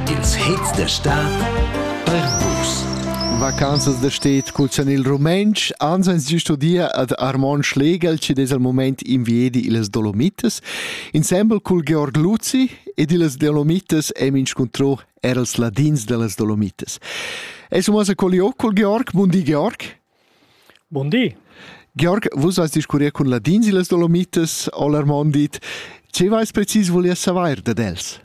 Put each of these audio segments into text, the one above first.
Ils hits da stad per vus. Vacanzas da sted cuzzan il rumentsch, ans ans giu studia ad Armon Schlegel, ci des al moment inviedi illas Dolomitas, insembel cul Georg Luzzi ed illas Dolomitas hem inscuntrò er als ladins dellas Dolomitas. Es umas a colliò col Georg, bundi Georg. Buondì. Georg, vus has discurrià cun ladins illas Dolomitas, Olarmond dit. Che vais precis volier savair dad els?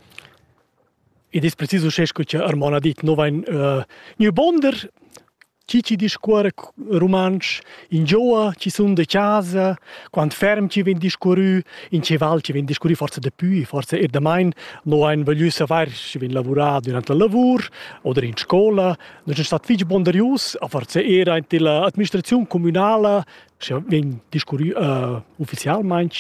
Id es precis uschè scu cha Armon ha dit, no vain uh, gnü bonder, chi chi discuorra rumantsch, ingioa chi sun da chasa, quant ferm chi vegn discurrü, in che val chi vegn discurrü, forsa dapü, forsa eir damain, no hain voglü savair, schi vegn lavurà durant la lavur oder in scola, Nus stat fich ponderius a far era in la administraziun communala, sche vegn discurrü uh, ufficialmaing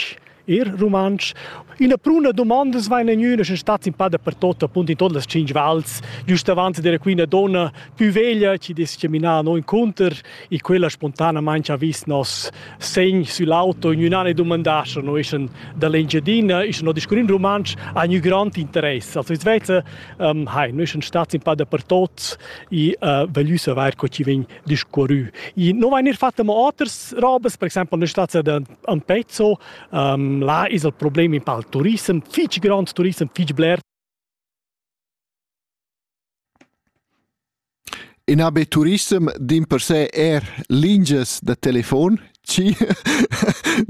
er rumantsch. Ina pruna domandas vain egnüna sche stat in pa dapertot appunto in tot las cinc vals, giust avanti dera quina donna più veglia ci discriminar no inconter e quella spontanamente ha vis nos segn sull'auto in un'anno domandà se noi schon dall'Engiadina e se no discurrin rumantsch ha un grand interesse. Also es vete Um, hai, noi sun stats in pa dapertot e uh, voglio saper co ci vegn discorrü. E non vain eir fatta mo oters robes, per exempel noi stats a Pezzo, um, là es il problem in pa il turissem, fich grond turissem, fich bler. In ha be turissem dimpersè eir lingias da telefon, chi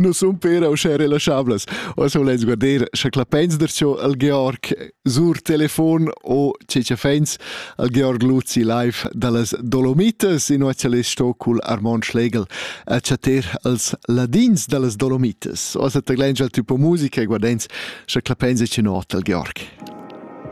nu sun pera uschè relaschablas. Oz voless guarder scha clappains darcho al Georg sur telefon o che cha fains al Georg Luzi live da las Dolomitas, inuocha less sto cul Armon Schlegel a chatter als ladins da las Dolomitas. Oz at taglais già tü po musica e guardains scha clappains e chi not al Georg.